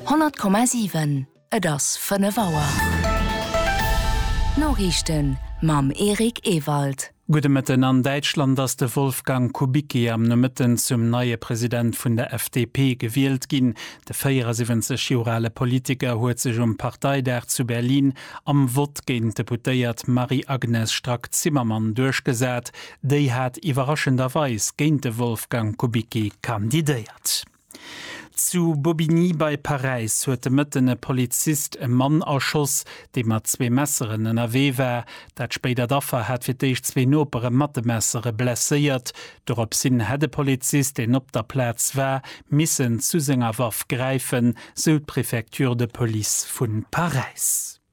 100,7 Et ass 5 Auer. D'Noriichten mam Eric Ewald. Gudde Mëtten. An Däitschland ass de Wolfgang Kubicki am Nomëtten zum neie President vun der FDP gewielt ginn. De 74 Joer ale Politiker huet sech um Parteidag zu Berlin am Vott géint d'Deputéiert Marie-Agnes Strack-Zimmermann duerchgesat. Déi hat iwwerraschenderweis géint de Wolfgang Kubicki kandidéiert. Zu Bobigny bei Paräis huet de Mëtten e Polizist e Mann erschoss, dee mat zwee Messeren ënnerwee war. Dat spéidert Affer hat fir d'éischt zwee Nopere mat de Messere blesséiert. Doropshin hätt e Polizist, deen op der Plaz war, missen zu senger Waff gräifen, sou d'Préfecture de Police vu Paräis.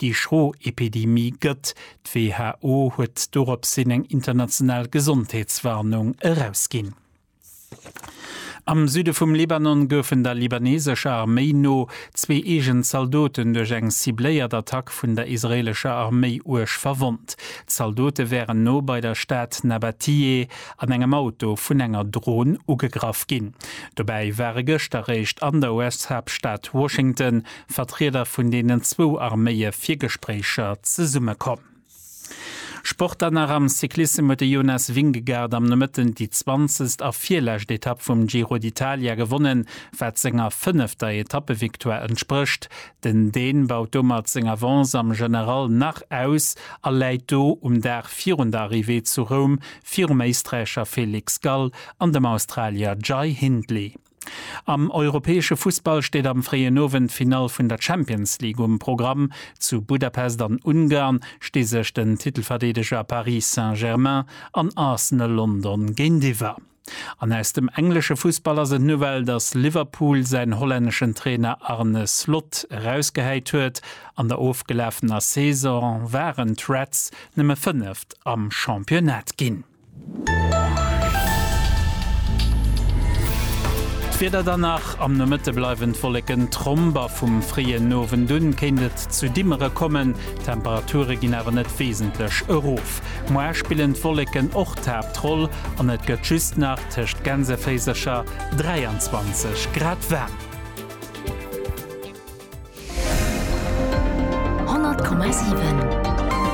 Déi schro Epidemie gëtt. D'WHO huet doropshin eng international Gesondheetswarnung erausginn. Am Süde vum Libanon goufen der libaneesescher Arméi no zwee eegen Zaldoten duerch eng cibléiert Attack vun der israeelescher Arméi uerg verwonnt. D'Zaldote wären no bei der Stad Nabatiyeh an engem Auto vun enger Dron ugegraff ginn. Dobäi ware gëscht eréischt an der US-Haaptstad Washington Vertrieder vun deenen zwou Arméie fir Gespréicher zesummekomm. Sport dann nach, Am Cyclissem huet de Jonas Vingegaard am Nomëtten déi zwanzegst a virlescht Etapp vum Giro d'Italia gewonnen, wat senger fënnefter Etappevictoire entsprécht. Den Dän baut domat seng Avance am General nach aus a läit do um Dag virun der Arrivée zu Roum virum Éisträicher Felix Gall an dem Australier Jai Hindley. Am europäesche Fussball steet am fréien Owend d'Finall vun der Champions League um Programm. Zu Budapest an Ungarn sti sech den Titelverdeedeger Paris Saint-Germain an Arsenal London géintiwwer. An aus dem englesche Fussball ass et d'Nouvelle, datt Liverpool säin hollänneschen Trainer Arne Slot erausgehäit huet. An der ofgelafener Saison waren d'Reds nëmme Fënneft am Championnat ginn. D'Wieder dann nach, Am Nomëtte bleiwen d'Wolleken tromp a vum fréien Owend u kéint et zu Dimmere kommen. D'Temperature ginn awer net wesentlech erof. Muer spillen d'Wolleken och d'Haaptroll an et gëtt just nach tëscht Gänseféisercher 23 Grad waarm.